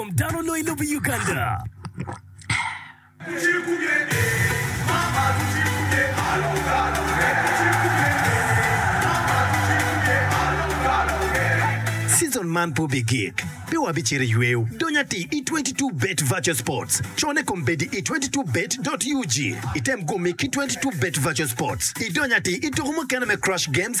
Kom dano onongo i lobo i Uganda. Season man pe obigik, pe wabicito i yweyo dony atir i 22Bet Virtual Sports. Cone kom bedi i 22Bet.ug. Item gumi ki 22Bet Virtual Sports idony atir i tuko mukene me Crush Games,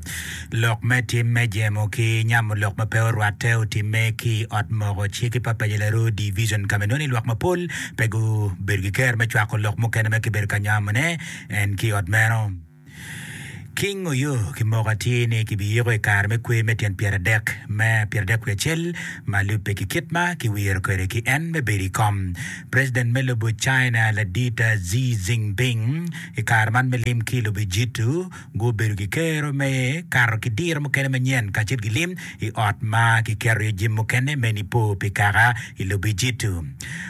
Lok me tim me jemo ki nyamo lok ma pe orwatte otimme ki i Ot Moko Cik ki Papaja Laroo Division ka ma inongo ni lwak mapol pe gubedo ki kero me cwako lok mukene ma kibedo ka nyamone en ki i ot meno. King Oyo ki moko atir ni kibiyiko i kare me kwer me tyen pyeradek me pyeradek wiye acel ma lubbe ki kit ma kiwiro kwede ki en me bedo i kom. President me lobo China ladit Xi Jinping i kare man me lim ki i lobo Ejitu, Gubedo ki kero me kato ki diro mukene manyen kacel ki lim i ot ma kiketo iye jami mukene me Nipo pi Kaka i Lobijitu.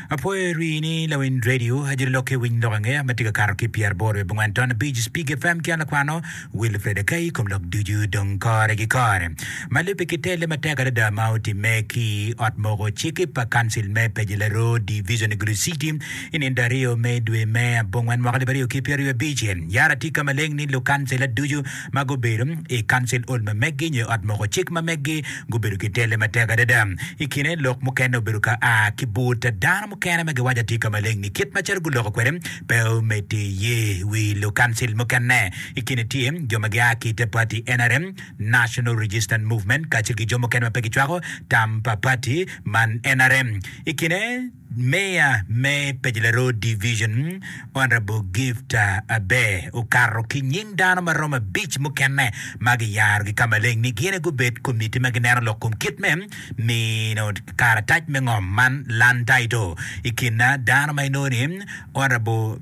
Apwoyo rii ni lawiny redio Ajoli Lok ki Winy Lok Angeya ma tye ka kato ki pyeraboro wiye bongwen taun abic, Spig FM ki an lakwano Wilfred Akai i kom lok ducu dong kore ki kore ma lubbe ki telle matek adada ma otimme ki ot moko cik pa Kancil me Pejilero Division i Gulu City. I nino aryo me dwe me abongwen mwaka alip aryo ki pyeraryo abic, yara atika maleng ni lukancila ducu ma gubedo i Council Hall ma meggi nyo i Ot Moko Cik ma meggi gubedo ki telle matek adada. I kine, lok mukene obedo ka a ki but dano mukene ma giwaco atika maleng ni kit macalo guloko kwede pe omedde iye. I wi lukancil mukene i kine tye jo ma gia ki i te pati nrm, National Resistance Movement, kacel ki jo mukene ma pe gicwako tam pa pati man nrm. I kine, Meya me Pejela Road Division, Honourable Gift Abee okato ki nying dano ma romo abic mukene ma giyarogi ka maleng ni gin aye gubed komitti ma gineno lok kom kit me mino karatac me ngom man Land Title. I kin dano ma inongo ni Honourable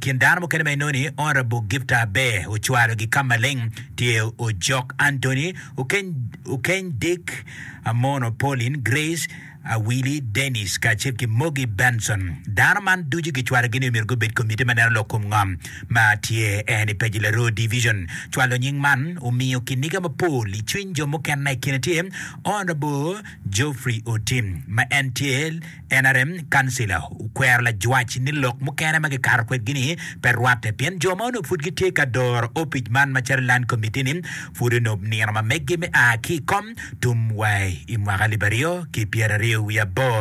kin dano mukene ma inongo ni Honourable Gift Abee ocwalogi ka maleng tye Ojok Anthony, Okeny Dick, Amono Pauline Grace, Awili, Dennis, kacel ki Moggy Benson. Dano man ducu gicwalogi ni myero gubed komiti ma neno lok kom ngom ma tye en i Paji Laroo Division. Cwalo nying man omiyo kiniga mapol i cwiny jo mukene na i kine tye Honourable Geoffrey Otim ma en tye nrm councillor okwero lajwac ni lok mukene ma gikato kwedgi-ni pe rwatte pien jo ma onongo pud gitye ka doro opic man macalo Land Committee-ni Pud onup nino ma meggi me a ki i kom tum wa i mwaka alip aryo ki pyeraryo wiye aboro.